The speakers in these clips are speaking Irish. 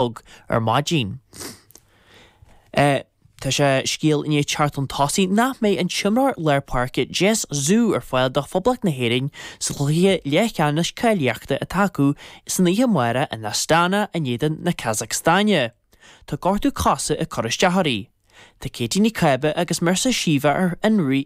bog ar maidín. Tá scéal i ndiaidh teacht chun tosaigh nach mbeidh an t-imreoir lár páirce Jess Ziu ar fáil do Phoblacht na hÉireann sa chluiche leathcheannais cáilíochta atá acu san oíche amárach in Astana in éadan na Casacstáine. Tá gortú coise ag cur isteach uirthi. Tá Katie Ní Cába agus Marissa Sheva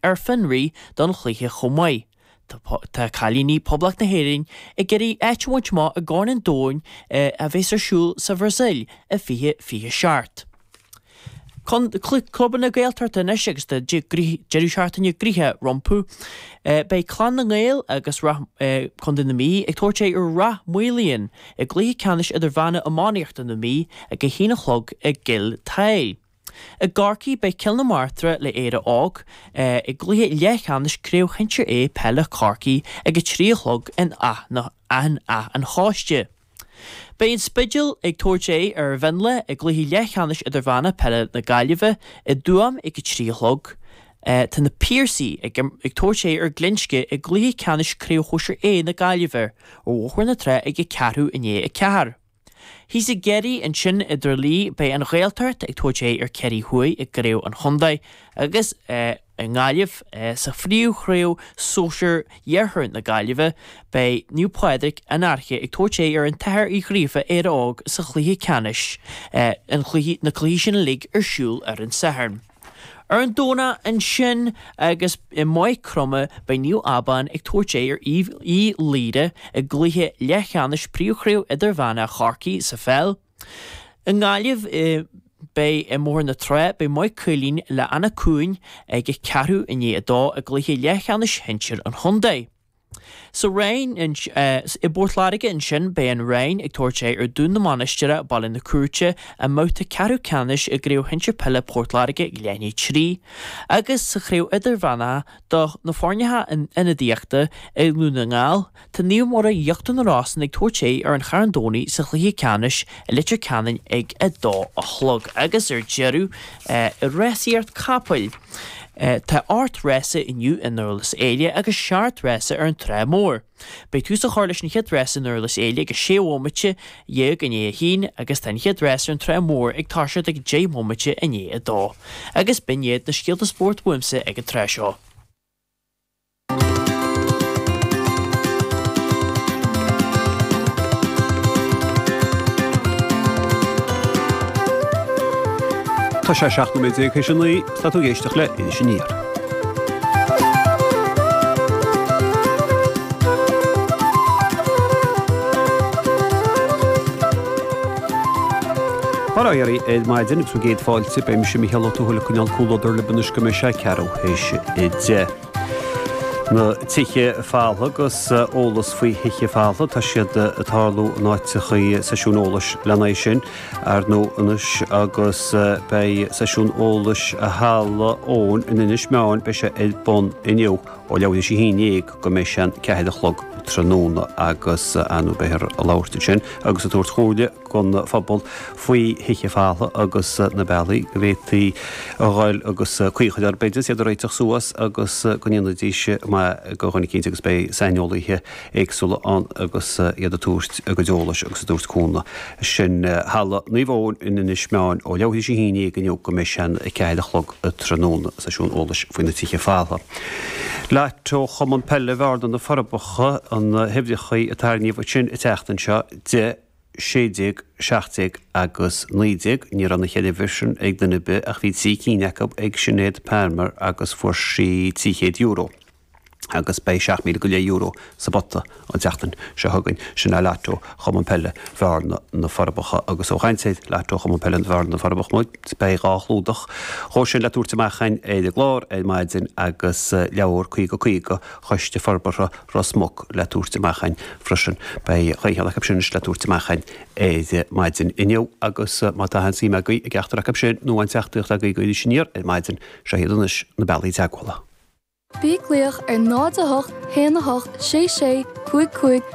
ar fionraí don chluiche chomh maith. Tá cailíní Poblacht na hÉireann ag iarraidh áit a bhaint amach i gCorn an Domhain a bheas ar siúl sa Bhrasaíl i 2027. Clubanna Gaeltachta anois agus tá deireadh seachtaine gnoitheach rompu, beidh Clann na nGael as Contae na Mí ag tabhairt aghaidh ar Ráth Moliain i gcluiche ceannais idirmheánach iománaíochta na Mí ag a haon a chlog i gCill Tadhaill. I gCorcaigh beidh Cill na Martra le Éire Óg i gcluiche leathcheannais Chraobh Shinsir A peile Chorcaí ag a trí a chlog in Áth an Chóiste. Beidh an Spidéal ag tabhairt aghaidh ar Mhionlach i gcluiche leathcheannais Idirmheánach Peile na Gaillimhe i dTuaim ag a trí a chlog. Tá Na Piarsaigh ag tabhairt aghaidh ar Ghlinsce i gcluiche ceannais Chraobh Shóisir A na Gaillimhe ar Bhóthar na Trá ag a ceathrú i ndiaidh a ceathair. Thíos i gCiarraí, ansin i dTrá Lí, beidh an Ghaeltacht ag tabhairt aghaidh ar Chiarraí Thuaidh i gcraobh an chontae agus i nGaillimh sa phríomhchraobh sóisir Iarthar na Gaillimhe beidh Naomh Pádraig, An Fhairche ag tabhairt aghaidh ar an tAthair Ó Gríofa, Éire Óg sa chluiche ceannais. na cluichí sin uilig ar siúl ar an Satharn. Ar an Domhnach ansin agus i Maigh Chromtha beidh Naomh Abán ag tabhairt aghaidh ar Uíbh Laoire i gcluiche leathcheannais Príomhchraobh Idirmheánach Chorcaí sa pheil. I nGaillimh beidh ar Bhóthar na Trá beidh Maigh Cuilinn le Anach Cuain ag a ceathrú i ndiaidh a dó i gcluiche leathcheannais shinsir an chontae. Sa Roinn, i bPort Láirge ansin, beidh an Rinn ag tabhairt aghaidh ar Dún na Mainistire, Baile na Cúirte, i mbabhta ceathrú ceannais i gCraobh Shinsir Peile Port Láirge leath i ndiaidh a 3, agus sa Chraobh Idirmheánach do na foirne ionadaíochta i nDún na nGall, tá Naomh Mhuire Íochtar na Rosann ag tabhairt aghaidh ar an Charn Domhnaigh sa chluiche ceannais i Leitir Ceanainn ag 2 a chlog. Agus ar deireadh, i rásaíocht capall. Tá ocht rása inniu i nDurlas Éile agus seacht rása ar an Trá Mhór. Beidh tús á chur leis an chéad rás i nDurlas Éile ag a sé bhomaite dhéag i ndiaidh a haon agus tá an chéad rás ar an Trá Mhór ag toiseacht ag deich mbomaite i ndiaidh a dó. Agus b'in iad na scéalta spóirt uaimse ag an tráth seo. Tá sé 17 nóiméad tar éis a naoi, tá tú ag éisteacht le Iris Aniar. Bail ó Dhia oraibh ar maidin agus bhur gcéad fáilte, beidh mise, Mícheál Ó Tuathail, ag coinneáil comhluadar libh anois go mbeidh sé ceathrú. tar éis a deich. Na tithe folmha agus eolas faoi thithe folmha, tá siad ag tarlú in áiteachaí, seisiún eolais lena aghaidh sin ar ndóigh anois agus beidh seisiún eolais i Halla Eoin in Inis Meáin, beidh sé ar bun inniu ó leathuair tar éis a haon déag go mbeidh sé an ceathair a chlog tráthnóna agus ar ndóigh beifear ag labhairt ansin agus ag tabhairt comhairle don phobal faoi thithe folmha agus na bealaí go bhféadfaí a dhul agus caoi a chur orthu b'fhéidir is iad a réiteach suas agus go ndéanfaidís maith do dhuine eicínt agus beidh saineolaíthe éagsúla ann agus iad ag tabhairt a gcuid eolais agus ag tabhairt cúnamh. Sin Halla Naomh Eoin in Inis Meáin ó leathuair tar éis a haon déag inniu go mbeidh sé an 4 a chlog tráthnóna. Seisiún eolais faoi na tithe folmha. Lató Chumann Peile Bhearna-Na Forbacha, na huimhreachaí a tarraingíodh ansin an tseachtain seo. Deich. 16, 17 agus 19, ní raibh na cheithre uimhir sin ag duine ar bith ach bhí trí cinn acu ag Sinéad Palmer agus fuair sí €300 agus beidh seacht míle go leith euro sa bpota an tseachtain seo chugainn. Sin é Lató Chumann Peile Bhearna, Na Forbacha agus ós ag caint ar Lató Chumann Peile Bhearna, Na Forbacha muid. Beidh dhá chlúdach dhó sin le tabhairt amach againn ar an gclár ar maidin agus leabhar 50 50 Choiste Forbartha Ros Muc le tabhairt amach againn freisin. Beidh dhá cheann acu sin anois le tabhairt amach againn ar maidin inniu agus má tá aon suim agaibh i gceachtar acu sin nó aon teachtaireacht agaibh do Iris Aniar ar maidin, seo iad anois na bealaí teagmhála. Bí ag glaoch ar 08 1 8 6 6 5 5